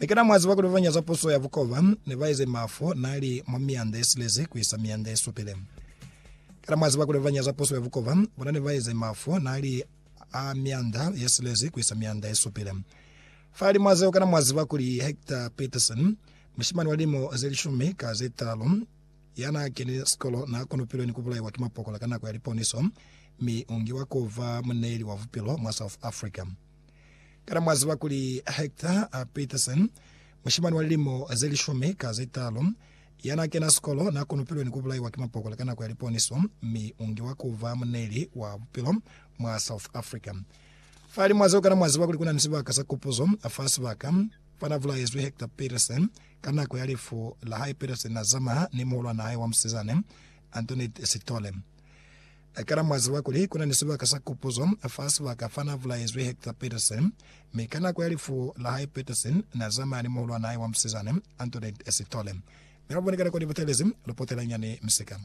Mi kana mwa ziba kuli babañata za puso ya bukoba ne ba eze mafu na li mwa mianda ye silezi ku isa mianda ye supile? Kana mwa ziba kuli babañata za puso ya bukoba bona ne ba eze mafu na li a mianda ye silezi ku isa mianda ye supile? Fahalimwa zeo, kana mwa ziba kuli Hector Peterson, mushimani wa limo ze lishumi ka ze talu, ya na keni sikolo na konopilwe ni ku bulaiwa ki mapokola ka nako ya liponiso, mi u ngiwa ku ba muneeli wa bupilo mwa South Africa? Kana mwa ziba kuli Hector Peterson, mushimani wa lilimo ze lishumi ka ze talu, ya n'a kena sikolo, n'a konopilwe ni ku bulaiwa ki mapokola ka nako ya liponiso, mi u ngiwa ku ba muneli wa bupilo mwa South Africa? Fahalimw'a zeo, kana mwa ziba kuli ku na ni sibaka sa kupuzo fa sibaka fa n'a bulaezwi Hector Peterson? Ka nako ya lifu la hae, Peterson n'a zamaha ni muhulwan'a hae wa musizane, Antoinette Sithole. Na kana mwa ziba kuli ku na ni sibaka sa kupuzo fa sibaka fa na bulaezwi Hector Pietersen, mi ka nako ya lifu la hae Pietersen na zamaya ni muhulwan'a hae wa musizana, Antoinette Sithole. Ne ba bonekana kwa libutelezi lu potela nyani misika.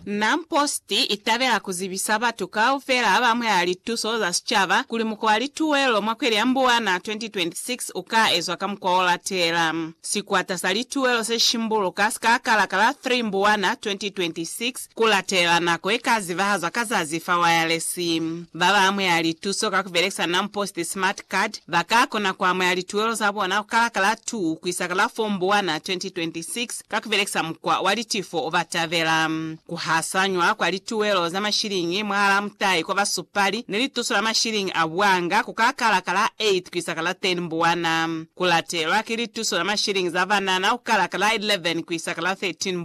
Nam Post i tabela ku zibisa batu kaufela ba mweha lituso za sicaba kuli muko wa lituwelo mwa kweli ya Mbuwana 2026 u ka ezwa ka mukwa o latela. Sikwata sa lituwelo se shimbuluka si ka kalaka la 3 Mbuwana 2026 Ku latela nako ye ka zibahazwa ka zazi fa wayalesi. Ba ba amuhela lituso ka ku belekisa NamPost Smart Card ba ka kona ku amuhela lituelo za bona ku kala ka la 2 ku isa ka la 4 Mbuwana 2026 ka ku belekisa mukwa wa litifo o ba tabela. Ku hasanywa kwa lituelo za mashilingi mwahalaa mutai kwa basupali ni lituso la mashilingi a buanga ku ka kala ka la 8 ku isa ka la 10 Mbuwana. Ku latelwa ki lituso la mashilingi za banana ku kala ka la 11 ku isa ka la 13 Mbuwana.